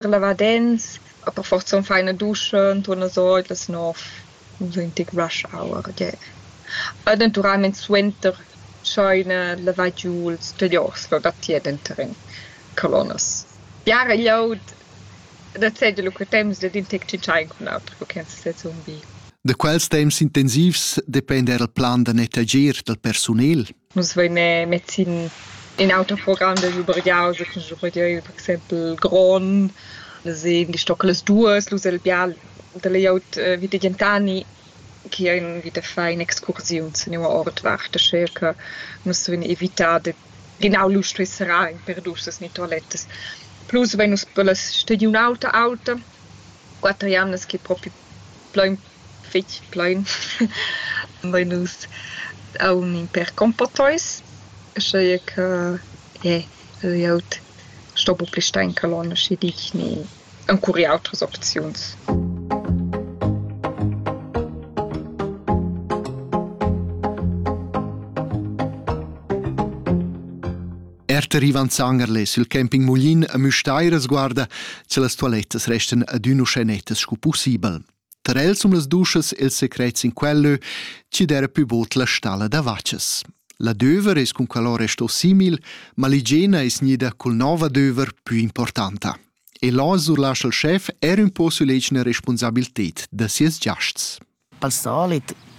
Per lavadents a per forza am faina duscha intuorn a soit las nov, sun ün tic rush hour, okay. E natüralmaing suenter tschaina lavà giuls tuot iours per battier denter in colonnas. Biara glieud nezegia lur quel temps dad intec tschintschair cun l'auter cochenza sezza ün bi. Da quels temps intensivs dependa eir il plan da nettagier dal persunel. Nus vein mess sin in auter program da schubregiaus e cun schubregiar per exempel gron. Nus ein gestocca las duas, lu sil bial da layout Vita Gentani che ein vita fein excursiuns en ina ordvart aschia che nus vein evitar da genau lu stuer serrar in per dus ni toilettas. Plus vein nus per la stagiun auta auta quatter jamnas che propi plein fetg plein vein nus aunc in pèr compoteis, uschia che eh glieud sto buca pli star in callon, schidic ni encurri autras opziuns. Erter Ivan Zangerle sil camping Muglin a Müstair sguarda, se las toilettas restan adün uschè nettas sco pussibel. Tar el sun las duschas ils secrets in quellö chi d'eira pü bod la stalla da vachas. L'adöver es cun quel ora sto simil, ma l'igiena es gnida cul nouv adöver pü importanta. E là surlascha il schef er ün po sulegna respunsabilted da sieus giasts. Al solit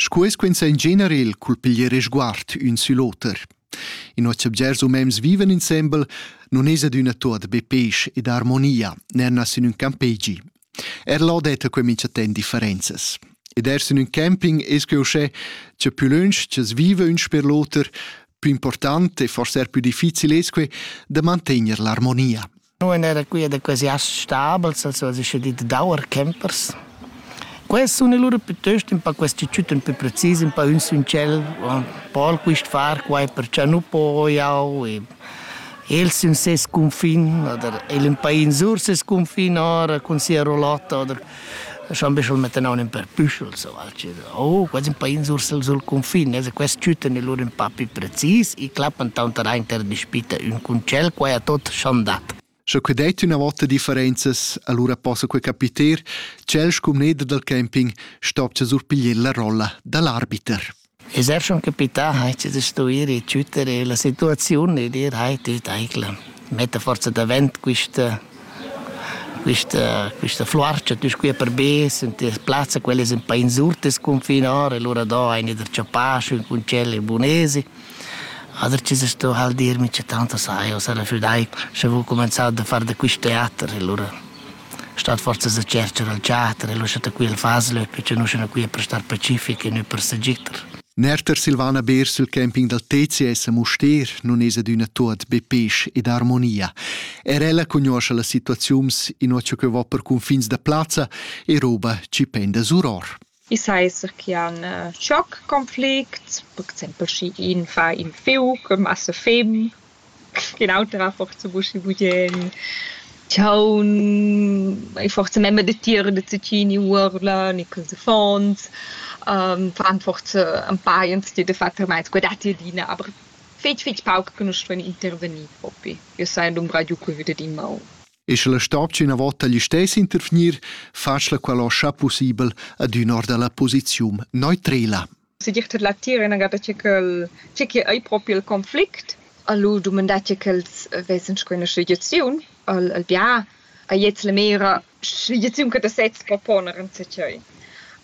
Sco es quinsa in generel cul piglier resguard ün sül oter. In noss subgers umens vivan insembel, non es adüna tuot be pesch ed armonia, nernas in ün campegi. Er là detta que mincha temp differenzas. Ed ers in ün camping es que uschè, cha più lönch ch'as viva ün sper l'oter, più important e forse er più difficil es que da mantegner l'armonia. No en era quia da quasi asch stabels, also as ischa dit d'auer campers. Quels sun alura pütöst ün pa quels chi tschütan pü precis ün pa ün sün tschel, pol quist far quai perchè nu po jau e el sün ses cunfin oder el ün pa in sur ses cunfin ora cun sia rollotta oder schon ein bisschen miteinander in per Büschel so alci. Oh, quasi un po' insursel sul confin, also quest schütten lur un po' più precis e clappen tanto rein ter dispita un concel, qua è tot schon dat. Sche que deit üna volta differenzas, allura possa que capiter, ch'el scum neder dal camping stopcha surpiglier la rolla da l'arbiter. Es er schon capità, hai ti da stuir ir tschütter e la situaziun e dir hai tüt eicla. Metta forza davent quista quista quista fluarcia tüs qui per be sentir plazza quella es ün pa insurta ins cunfin ora e lura do eine der chapà schön cun celle bunesi Ader ci sto hal dirmi che tanto sai o sarà füdai, sche vu comenzar da far da quist teater e lura stat forzas a tschercher al teater e l'uschè da quia fas lö che nu sun quia per star pacific e nö per s'agiter. Nerter Silvana Beer sul camping dal TCS a Mustér nun es adüna tuot be pesch ed armonia. Er ella cugnuoscha las situaziuns, inua cha que va per cunfins da plazza e roba chi penda suror. I sa esser chi han schoc conflicts, per exaimpel schi iin fa in fiuc massa fim, ch'ün auter ha forsa buschi bugen chaun, e forsa memma datier da zacchini uorlan e cos affonds, fan forsa ün pa ins di dafatt termai sguadatti adina, aber fetg fetg pauc che nus ston intervegnir propi. Eu sai dumbrar giù cur viev dat in maun. E sche la stopcha ina vota gli stess intervgnir, facla quella scha possibel adünor dalla posizium neutrela. Se dir tot la tira inagada che quel che che ei propi il conflict alu dumandar che quels vessen sco una suggeziun al, al bia a jetzt le mera suggeziun che da sets proponer in secei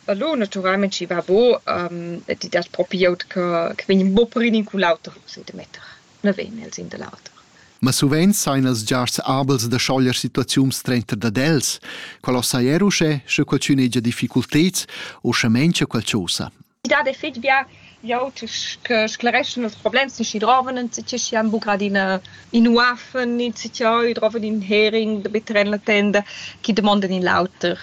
Allora, naturalmente, ci va bo, um, di dat proprio che, che vegn un po' prin in cu l'auter, se de metter. na vegn el sin da l'auter. Ma suvenz sajan els giasts abels da schoglier situaziuns tranter dad els, qual ossa er uschè, sche qualchün hegia difficulteds o sche mengia qualchosa. I dat e fitg bia glieud che sclereschan ils problems che droven en zitje și am bucra din in uaffen in zitje i droven in hering da bitter en la tenda chi demonden in lauter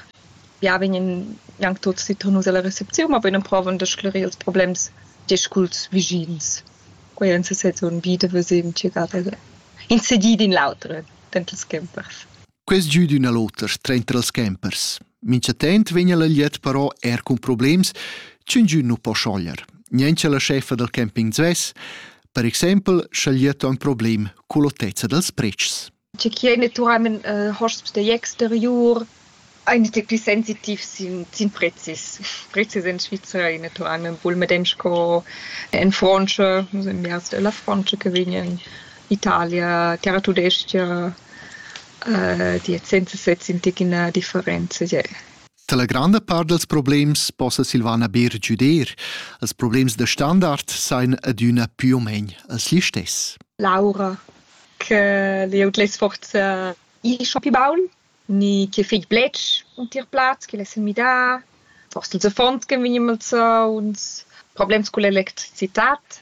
ja vegnen jang tuts si turnus alla recepziun ma vegnen proven da sclerir ils problems disculs vigins Quei en sesezun bi da veser mitigadaga. In segir d'in l'auter denter ils campers. Quest giu d'üna l'otra trenta els campers. Minchatent vegna la gliet però er cun problems ch'ün giu nu po schoglier. Niench la chefa dal camping svess, per exempel, scha gliet ho ün problem cull'otezza dals pretschs. tge chi ei natüralmaing äh hosps dagl exteriur ein iste pü sensitivs sin sin prezis. Prezis in Svizra ei natüralmaing wohl medem sco in Frantscha, also im März della Frantscha che vegnan Italia, Terra-Tudescha, äh die Zinsen setzen in differenza. Dalla granda part dals problems possa Silvana Beer giuder. Els problems da standard sain adüna più o meno els listess. Laura, che leu less forza il schoppi baul, ni che fig blech und dir plaz che lessen midar, forst els affons che vegnan malsauns, problems con l'electricitat,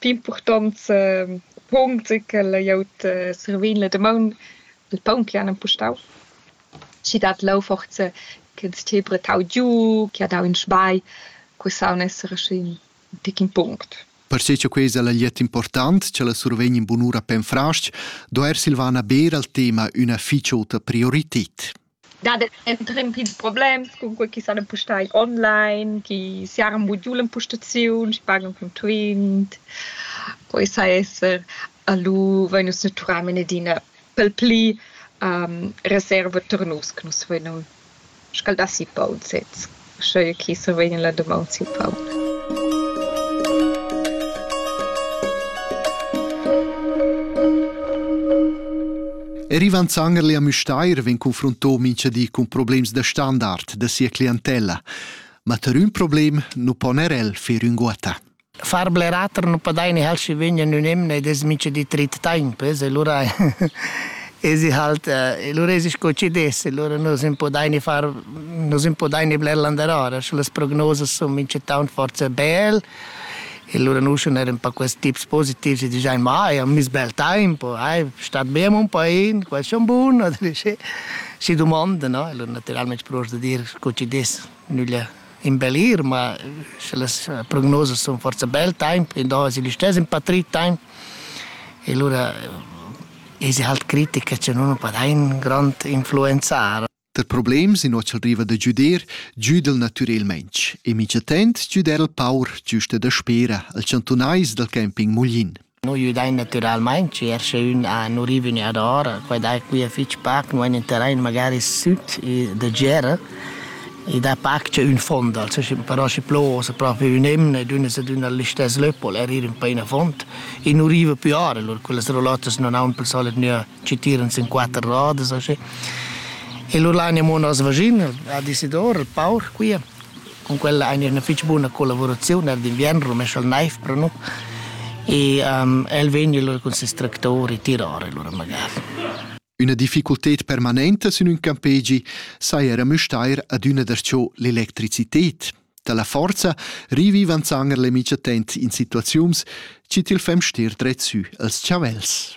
D'impurtont punct ei ch'el ha glieud survegn la damaun il paun che han empustau. Schi dat leu forsa ch'ins ti ha brattau giu, chi ha dau in sbai, quei saun esser aschi in tec in punct. Perche cha quei esa la glieud important, cha la survegn in bunura penfrastg, do eir Silvana Beer al tema üna fich ota priorited. dat el emprim pils problems, cunquei ch'i san empustar eir online, chi siaran buc giu l'empustaziun, schi pagan gratuit. Poi sai esser, a lu vein nus natüralmein adina pel pli reserva per nus che nus vein scaldà si paun sez. Sche chi survegn la dumang siu paun. Rivan Zangerli a Müstair vegn confronto mincha di cun problems da standard da sia clientella. Ma tar ün problem nu pon er el fer ünguotta. far bler ater nu padain e ha'l schi vegn a ün emna ed es mincha di trit taimp, es e lura esi halt e lura esi sco chi dess e lura nus impudain far nus impudain bler landerora, sche las prognosas sun minchatant forsa bel e lura nu sun eir ün pa quels tips positivs e digiain ma eir miss bel taimp, ai stat bem ün pa in, quel sun bun oder schi dumonda, no? E lura natüralmaing pro'ls da dir sco chi dess nüglia. imbellir, ma sche las eh, prognosas sun forsa bel temp, in do es il istes in patrit temp, e lura es halt critica che nun pat ein grond influenzar. Der problem sin ocel riva da giuder giudel natürelmaintg e migia tent giuder il paur giusta da spera al chantunais dal camping Muglin. Nus giudain natüralmaing tscherch ün a nu riva gnü ad ora, quai dà quia fich pac, nu vain ün terrain magari süt da gera i dà pac che ün fond also, però schi plos propi ün emna ed üna ad üna a l'istess löppel e riva ün po in avont. I nu riva pü ora lur, quellas rolottas nun haun pel solit gnü chi tiran sin quatter rodas o schi. E lur lain amo nos vaschin ad Isidor, il paur quia. Cun quella ein ina fetg buna collavuraziun el d'inviern rumescha neiv per nu e um, el vegni lura cun ses tractor e tirar lura magari. Üna difficultad permanenta sün ün campegi sai era müstair adüna darcho l'electricited. Dalla forza rivivan zanger le migia tent in situaziuns, ci til fem stir dret sü als chavels.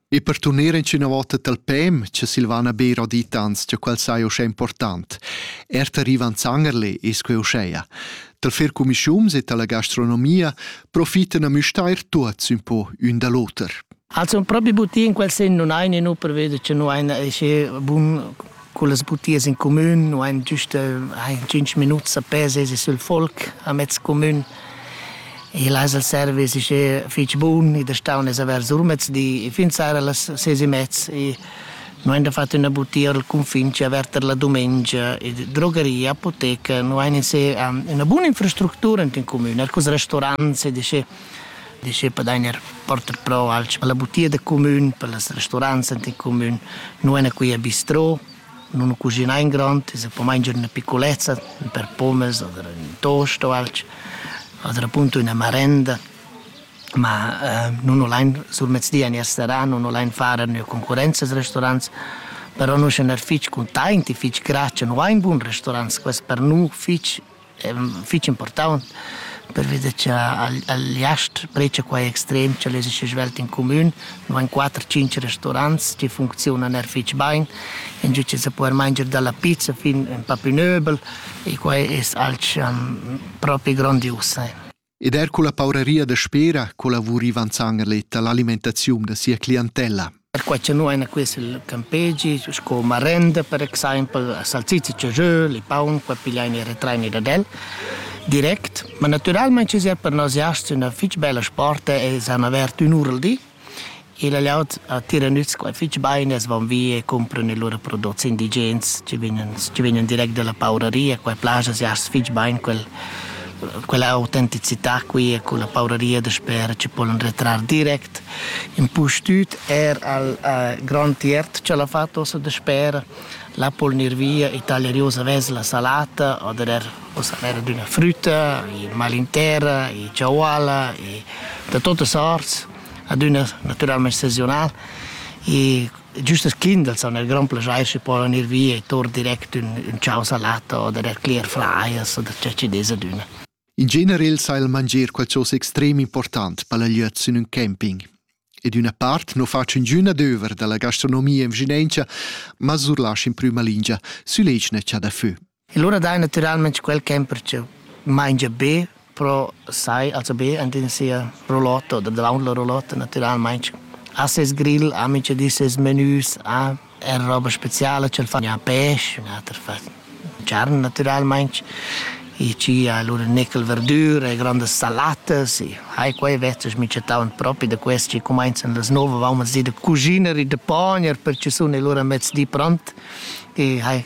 E per turner inschina vota tal pem, che Silvana Bero dit ans, che quel sai uschè important. Erta Rivan Zangerle es que uscheia. Tal fer comischiums e tala gastronomia profitan a müstair tuots un po ün da l'oter. Also propi buti in quel sen non hai ne nu prevedo che nu hai che bun Cullas butias in comün nu hain güsta hai tschinch minuts a pè sesi sül folk amez comün e l'ais al servis uschè fich bun ed es staun es avert surmezzdi e fin sera las ses e mezz e nu hain da fat üna butia al cunfin chi è averta la dumengia e drogeria, apoteca, nu hain in se üna buna infrastructura ant ün comün, arcus restorants ed uschè discipa dain er porta pro alch la butia da cumün, per las restaurants ant il cumün. Nu ena qui a bistrò, nun cuginà in grond, es po manger üna piccolezza, ün per pommes oder ün toast o alch, oder appunto üna marenda, ma nun ho lain sur mezzdi ün restoran, nun ho lain far a üna concurrenza als restaurants, però nus sun er fich cuntainti, fich grazcha, nu hai ün bun restaurant, quest per nu fich è fitg important perveda cha al liast precia quai extrem cha les ische svelt in comün van 4-5 restaurants che funziunan er fitg bain in giu che se può manger dalla pizza fin un papin nöbel e quai es alch um, propi grandius. Ed er culla pauraria daspera collavurivanzan er letta l'alimentaziun da sia clientella. Perquai che nu ein quest il campegi, sco marenda per exempel, salsiccia che jeu, li paun, qua pigliain e retrain da del direct, ma naturalmente es er per nos jasts üna fich bella sporta e s'han avert ün'ura al di, Illa glieud a tira nüts quai fich bain e van via e cumpran i lur prodots indigens chi vegnan chi vegnan direct da la pauraria. Quai plascha, s'giast fich bain quel quella autenticità qui e culla pauraria dasper chi polan retrar direct impustüt eir al grand tiert cha l'ha fat ossa dasper. Là po'l gnir via, i taglia riusavess la salata oder eir Ussa era d'üna frütta, i mal in terra, i ciauala, i da totas sorts, adüna natüralmaing sezonal. E giüst as quinda'ls ho nel grand plajer schi povan ir via e tour direct ün ün ciao salato o da der clear fries o da che chi'd es adüna. In generel sa el manger qualchosa extrem important per la glieud sün ün camping. Ed üna part no fa tschüngün adöver da la gastronomia in vschinauncha, ma surlasch in prüma lingia süleschna cha da fö. E lura dai natüralmaing quel ch'è impercieu. Maingia be pro sai, also be ant in sia roulotta o davaunt la roulotta natüralmaing. Ha ses grill, ha minchadi ses menüs, ha er roba speciala ch'el fa, ha pesch, ün ater fa charn natüralmaing. I ci ha lura nichelverdüra e grandas salatas e hai quai vezzas minchataunt propi da quest chi cumainzan las nouv avaunt mezdi da cuschiner e da pogner perche sun i lura mezdi pront e hai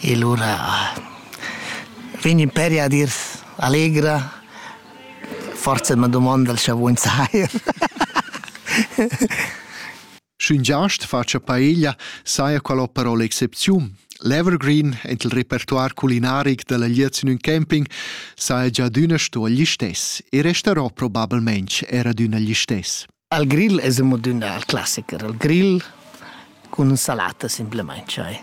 e lura vegn imperi ad ir allegra. Forsa ma domanda scha vuin sair. Sch'ün giast fatscha paeglia, saja qual ho però l'excepziun. L'Evergreen ed il repertoir culinaric da la gliez in ün camping saja già d'üna sto agli stess e resterò probabilmente er adüna agli stess. Al grill es amo d'üna al classiker, il grill cun salata simplemente, cioè.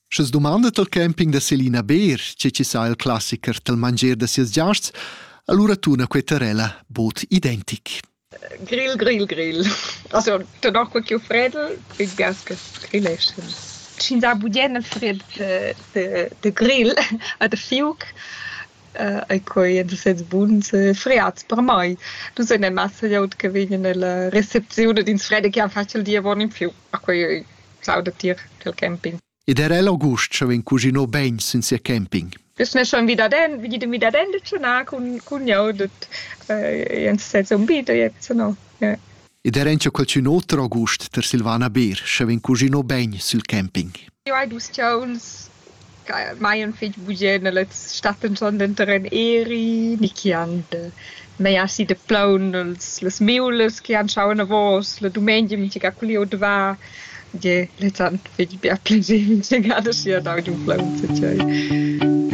Sche dumandet il camping da Selina Beer, che ci sa il classiker tel manger da sias giasts, allura tuna quei tarella bod identic. Grill, grill, grill. Also, da noch quel friedel, pigas che grilleschen. Ci da budien fried de, de, de grill a de fiuc, uh, e quei en ses buns uh, friats per mai. Dus en massa jaut che vegnen nella recepzione d'ins friede che ha faccio il dia buon in fiuc. a quei sauda tier il camping. Ed era el August schon vegn cuginò bein sin sia camping. Nus ne schon wieder den, wie giden wieder den schon cun cun jau tut jens sez un bito jetzt no. Ja. Ed era encha qualcun oter August ter Silvana Beer, sche vegn cuginò bein sil camping. Jo hai dus chauls Mai ün fich bugen e lets stattan schon denter in eri ni chi han mei aschi da plaun las miulas chi han schau anavos la dumengia minchagà cul lieur da va. Ie, lets han fich bel piager minchagà da schi ha dau giù plaun tut tgei.